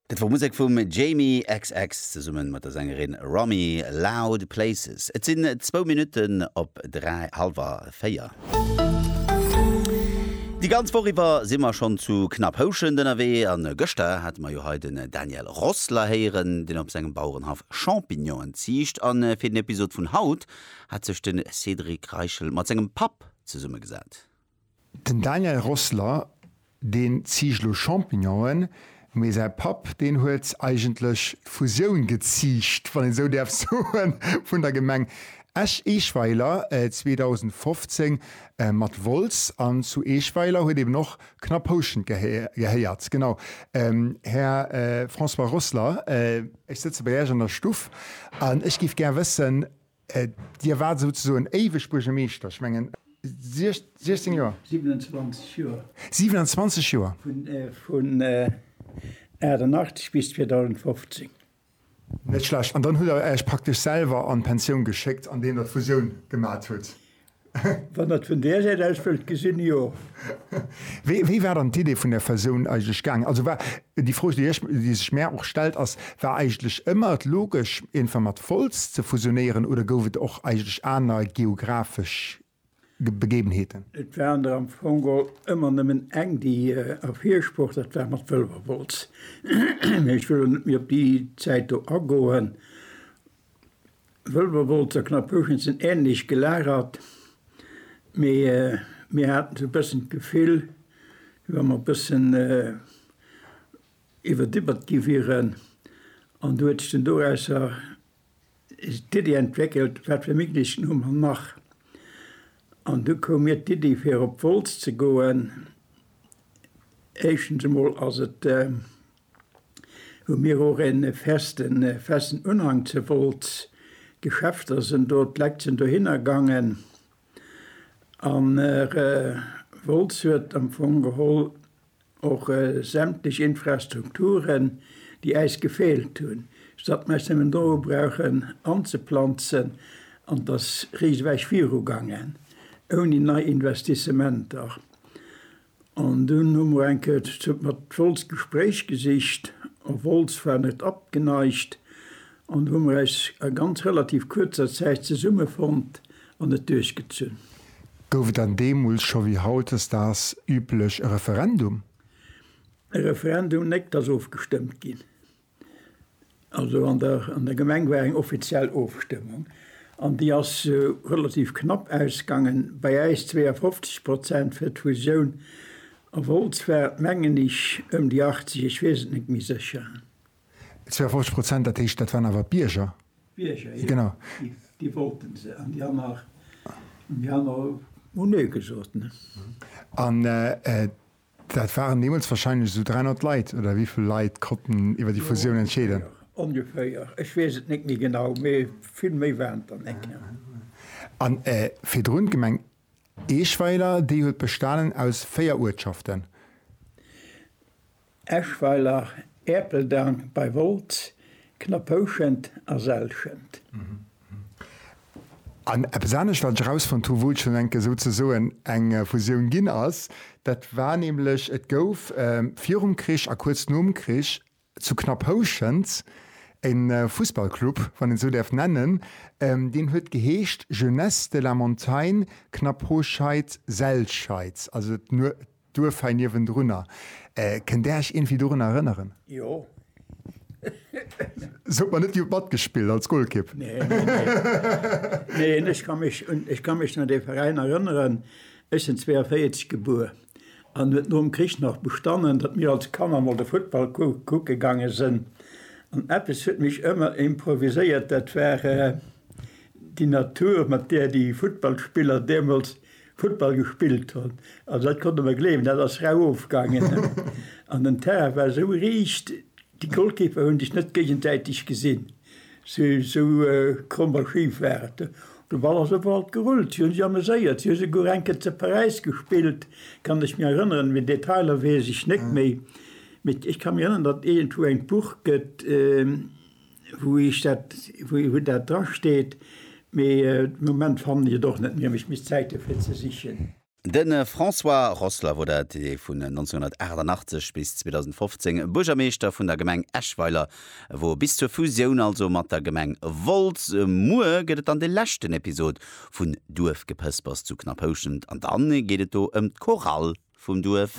Dat wor Musek vum Jamie xx zesummen mat der Sängerin Romy, Loud Places. Et sinn zwou Minutten op dräi, halwer véier. Déi ganz Woch iwwer si mer schonn zu Knapphouschent ënnerwee an gëschter hate mer jo hei den Daniel Rossler héieren, deen op sengem Bauerenhaff Champignonen ziicht. A fir den Episod vun haut hat sech de Cédric Reichel mat sengem Papp zesummegesat. Den Daniel Rossler, deen ziicht lo Champignonen, mee säi Papp, deen huet eigentlech d'Fusioun geziicht, wann een esou däerf soen, vun der Gemeng Esch-Eeschweiler 2015 mat Wolz an zu Eeschweiler huet eben och Knapphouschent gehéiert. Genau, Här François Rossler, ech sëtze bei Äech an der Stuff an ech géif gär wëssen, Dir waart souzesoen éiweg Buergermeeschter, ech mengen 16 Joer? 27 Joer. 27 Joer. Vun 88 bis 2015. Net schlecht. An dann hutt Der Äech praktesch selwer an d'Pensioun geschéckt, andeem Der d'Fusioun gemat hutt? Wann Der et vun där Säit aus wëllt gesinn, jo. Wéi war dann d'Idee vun der Fusioun eigentlech gaangen? Also war déi Fro, déi sech mär och stellt, ass, War eigentlech ëmmer et logesch, eenfer mat Wolz ze fusionéieren oder gouf et och eigentlech aner geographesch Begebenheeten? Et war an der am Fong geholl ëmmer nëmmen eng, déi ervirgesprach, dat war mat Wëlwerwolz. Mee ech wëll elo net méi op déi Zäit do agoen. Wëlwerwolz a Knapphugen sinn änlech gelagert, mee mir haten esou e bëssen d'Gefill, wéi wa mer e bëssen iwwerdiwwert gi wieren. An do huet sech dunn dorausser d'Iddi entwéckelt, wat fir Méiglechkeeten hu mer nach? An du koum mir d'Iddi, fir op d'Wolz ze goen. Éischtens emol ass et hu mir och en festen festen Unhang ze Wolz. D'Geschäfter sen do, d'Leit sen dohinner gangen an Wolz huet am Fong geholl och sämtlech Infrastrukturen déi äis gefehlt hun statt mer se do brauchen anzeplanzen an dass riesewäich viru gangen ouni nei Investissementer. An dunn hu mer eng Kéier ze zupp mat Woltz d'Gespréich gesicht, a Woltz war net abgeneigt, an du hu mer äis a ganz relativ kuerzer Zäit zesummefonnt an et duerchgezunn. Gouf et dann deemools scho wéi hautdesdaags üblech e Referendum? E Referendum, néck, 't ass ofgestëmmt ginn. Also an der, an der Gemeng war eng offiziell Ofstëmmung an déi ass relativ knapp ausgaangen, bei äis 52 Prozent fir d'Fusioun. A Wolz war et mengen ech ëm déi 80, ech weess et net méi sécher. 52 Prozent, dat heescht, dat waren awer d'Bierger? D'Bierger, jo. Genau. Déi wollte se an déi aner, déi aner hu Nee gesot. An Dat waren deemools warscheinlech esou 300 Leit, oder wéi vill Leit konnten iwwer déi Fusioun entscheeden? Ongeféier, ech weess et net méi genau, mee vill méi waren et der net. An virdrun d'Gemeng Eschweiler, déi huet bestanen aus véier Uertschaften? Eschweiler, Erpeldang bei Wolz, Knaphouschent a Selschent. An eppes anescht, wat ech erausfonnt hu wou et schonn enke souzesoen eng Fusioun ginn ass, dat war nämlech, et gouf virum Krich a kuerz nom Krich zu Knapphouschent e Fussballclub, wann een esou däerf nennen, deen huet geheescht Jeunesse de la Montagne Knapphouscheid-Selscheid, also D'Duerf hei niewendrunner, kënnt Där Iech iergendwéi dorun erënneren? Jo. Sot mer net, Dir hutt matgespillt als Golkipp. Nee, nee, nee. Neen, ech ka mech un, ech ka mech un dee Veräin erënneren. Ech sinn 42 gebuer an huet nom Krich nach bestanen, datt mir als Kanner mol de Futtball kucke gaange sënn. An eppes huet mech ëmmer improviséiert, dat war déi Natur, mat där déi Futtballspiller deemools Futtball gespillt hun, also dat konnt der mer gleewen, dat ass rau ofgaangen. An den Terrain war esou riicht, déi Golkiper hun sech net géigensäiteg gesin, esou kromm a schif war et. De Ball ass op alt gerullt, si hun sech ameséiert, si hu souguer eng Kéier zu Paräis gespillt, kann ech mir erënneren, mee Detailer weess ech net méi. Mee ech kann mech erënneren, datt iergendwou engt Buch gët. wou ech dat, wou dat dra steet, mee de Moment fannen ech et och net méi, an ech misst Zäit dofir ze sichen. De François Rossler wor dat, dee vun 1988 bis 2015 Buergermeeschter vun der Gemeng Eschweiler wor, bis zur Fusioun also mat der Gemeng Wolz. Muer gëtt et dann de leschten Episod vun Duerfgepëspers zu Knaphouschent an dann geet et do ëm d'Chorale vum Duerf.